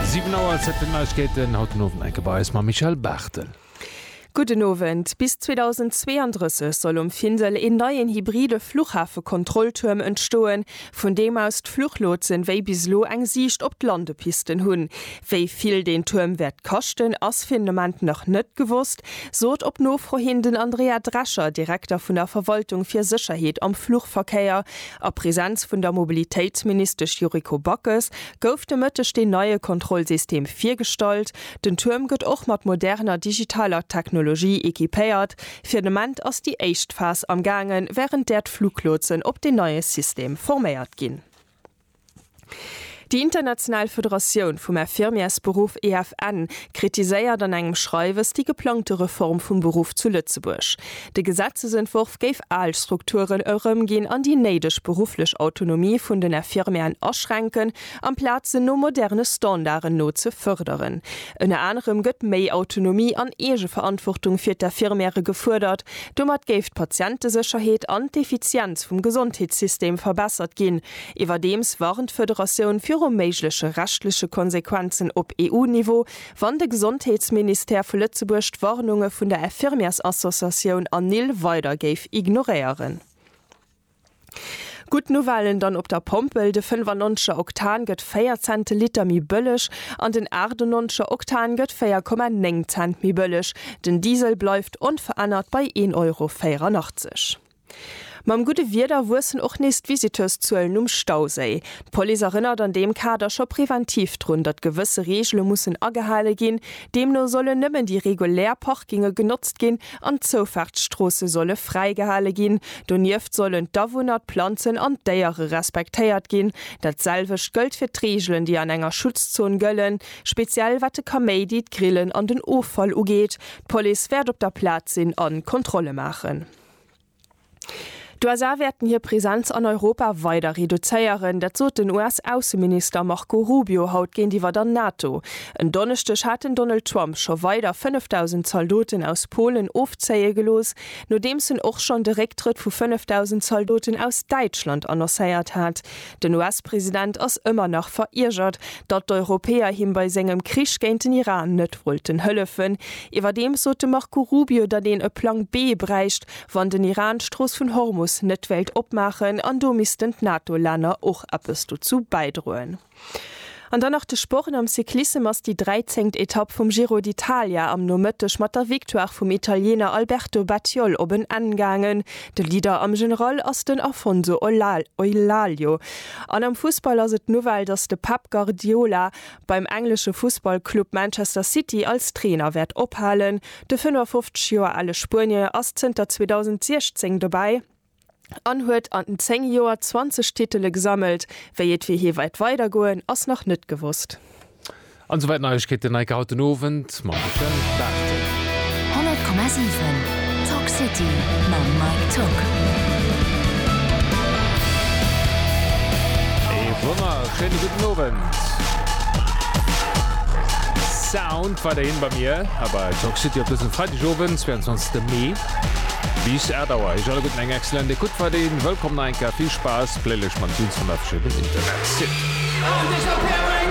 Siwen Auer, Zäit fir d'Neiegkeeten, haut den Owend enke bei eis mam Michèle Barthel. Gudden Owend. Bis 2032 soll um Findel een neien hybride Fluchhafekontrolltuerm entstoen, vun deem aus d'Fluchlotsen wéi bis elo eng Siicht op d'Landepisten hunn. Wéi vill deen Tuerm wäert kaschten, ass fir den Ament nach net gewosst, sot op Nofro hin den Andrea Drescher, Direkter vun der Verwaltung fir Sécherheet am Fluchverkéier A Presenz vun der Mobilitéitsministesch Yuriko Backes gouf de Mëtteg deen neie Kontrollsystem virgestallt. Den Tuerm gëtt och mat moderner digitaler Technologie equipéiert. Fir den Ament ass déi éischt Phas am gaangen, wärend där d'Fluglotsen op deen neie System forméiert ginn. Déi international Federatioun vum Infirmièresberuff, EFN, kritiséiert an engem Schreiwes déi geplangte Reform vum Beruff zu Lëtzebuerg. De Gesetzesentworf géif al Strukturen erëmginn an déi néideg berufflech Autonomie vun den Infirmièren aschränken, amplaz se no moderne Standarden no ze fërderen. Ënner anerem gëtt méi Autonomie an Eegeverantwortung fir d'Infirmièren gefuerdert. Domat géif d'Patientesécherheet an d'Effizienz vum Gesondheetssystem verbessert ginn, Iwwerdeems warnt d'Federatioun viru méigleche rechtleche Konsequenzen op EU-Niveau, wann de Gesondheetsministère vu Lëtzebuerg d'Warnunge vun der Infirmièrsassociatioun ANIL weider géif ignoréieren. Gutt Nouvellen dann op der Pompel, De 95er Oktan gëtt 4 Cent de Liter méi bëlleg an den 98er Oktan gëtt 4,9 Cent méi bëlleg. Den Diesel bleift onverännert bei 1,84 Euro. Mam gudde Wieder wuessen och nees d'Visiteurszuelen um Stauséi. D'Police erënnert an deem Kader scho preventiv drun, datt gewësse Reegele mussen agehale ginn. Deemno sollen nëmmen déi regulär Parkinge genotzt ginn an d'Zoufaartsstroosse solle fräigehale ginn. Donieft sollen d'Awunner, d'Planzen an d'Déiere respektéiert ginn. Dat selwecht gëllt fir d'Reegelen, déi an enger Schutzzon gëllen, speziell wat de Kaméidi, d'Grillen an den Offall ugeet. D'Police wäert op der Plaz sinn a Kontrolle maachen. D'USA wäerten hir Presenz an Europa weider reduzéieren, dat sot den US-Ausseminister Marco Rubio haut géintiwwer der NATO. En Donneschdeg hat den Donald Trump scho weider 5.000 Zaldoten aus Polen ofzéie gelooss, nodeems en och schonn de Récktrëtt vu 5.000 Zaldoten aus Däitschland annoncéiert hat. Den US-President ass ëmmer nach veriergert, datt d'Europäer him bei sengem Krich géint den Iran net wollten hëllefen. Iwwerdeems sot de Marco Rubio, datt een e Plang B bräicht, wann den Iran d'Strooss vun Hormus net wéilt opmaachen, an do missten d'NATO-Länner och eppes dozou bäidroen. An dann nach de Sport, Am Cyclissem ass déi 13. Etapp vum Giro d'Italia am Nomëtteg mat der Victoire vum Italiener Alberto Battiol op en Enn gaangen. De Leader am General ass den Afonso Eulalie. An am Fussball ass et d'Nouvelle, datt de Pep Guardiola beim englesche Fussballclub Manchester City als Trainer wäert ophalen. De 55 Joer ale Spuenier ass zënter 2016 dobäi. an huet an 10 Joer 20 Titele gesammelt. Wéi et fir hie weit weider goen ass nach net gewosst. An souwäit Neiegkeeten Neike haut den Owend mam Michel Barthel. 100,7 Talk City mam Mike Tocq. Ee wonnerschéine gudden Owend. Sound weiderhin bei mir hei bei Talk City op dësem Freidegowend, 22 Mee. Bis 8 Auer eech alleguerten eng excellent Ecoute weideen. Wëllkomm nach eng Kéier, vill Spaass, gléiléch mat Tunes vun der verschiddenem Internetsite.